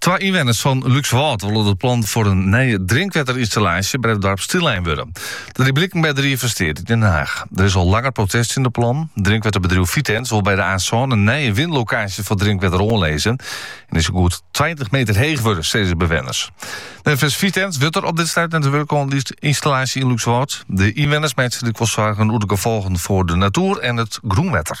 Twa ynwenners fan Lúkswâld wolle dat plannen foar in nije drinkwetterynstallaasje by it doarp stillein wurde. Dat die bliken by de Ried fan Steat yn Den Haag. Der is al langer protest tsjin de plannen. Drinkwetterbedriuw Vitens wol by de A-sân in nije winlokaasje foar drinkwetter oanlizze en dy soe goed tweintich meter heech wurde, sizze de bewenners. Neffens Vitens wurdt der op dit stuit net wurke oan dy ynstallaasje yn Lúkswâld. De ynwenners meitsje har lykwols soargen oer de gefolgen foar de natoer en it grûnwetter.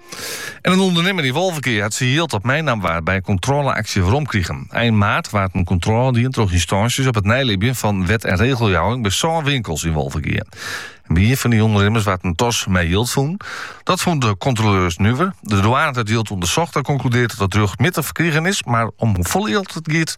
En in ûndernimmer yn Wolvegea hat syn jild dat meinommen waard by in kontrôleaksje weromkrigen. Ein maart waard in kontrôle dien troch ynstânsjes op it neilibjen fan wet- en regeljouwing by sân winkels yn Wolvegea. By ien fan dy ûndernimmers waard in tas mei jild fûn. Dat fûnen de kontroleurs nuver. De douane hat it jild ûndersocht en konkludearre dat it rjochtmjittich ferkrigen is, mar om hoefolle jild it giet,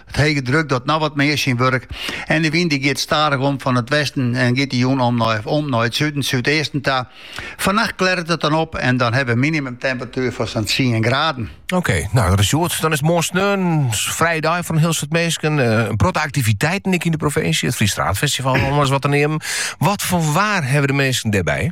It hege druk docht no wat mear syn wurk en de wyn dy giet stadich om fan it westen en giet de jûn om om nei it suden, súdeasten ta. Fannacht klearret it dan op en dan hawwe we minimumtemperatuer fan sa'n tsien graden. Oké, no dat is goed. Dan is it moarn sneon in frije dei foar in hiel soad minsken. Eh, in protte aktiviteiten ek yn de provinsje. It Fries Straatfestival, om ris wat te neamen. Wat foar waar hawwe de minsken dêrby?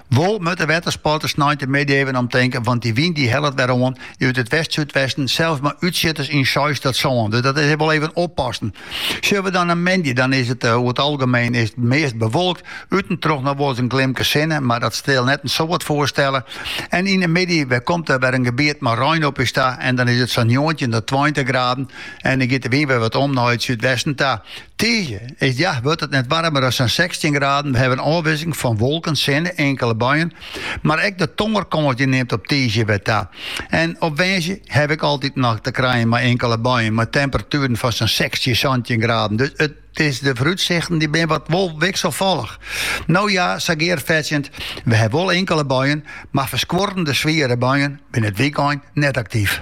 Wol moatte wettersporters sneintemiddei even om tinke, want dy wyn dy hellet wer oan dy út it west-súdwesten, sels mei útsjitters yn seis tot sân. Dus dat is wol even oppassen. Sjoch we dan nei moandei, dan is it oer it algemeen is it meast bewolkt, út en troch noch wolris in glimke sinne, mar dat sil net in soad foarstelle. En yn de middei wer komt der wer in gebiet mei rein op ús ta en dan is it sa'n njoggentjin tot tweintich graden en dan giet de wyn wer wat om nei it súdwesten ta. Tiisdei is ja wurdt it net waarmer as sa'n sechstjin graden. We hawwe ôfwisseling fan wolken, sinne, inkele buien. Mar ek de tongerkâns dy nimt op tiisdei wer ta. En op woansdei haw ik altyd noch te krijen mei inkele buien mei temperatueren fan sa'n sechstjin, santjin graden. Dus it is de foarútsichten dy binne wat wol wikselfollich. No ja, sa gearfetsjend, we hawwe wol inkele buien, mar ferskuorrende swiere buien binne it wykein net aktyf.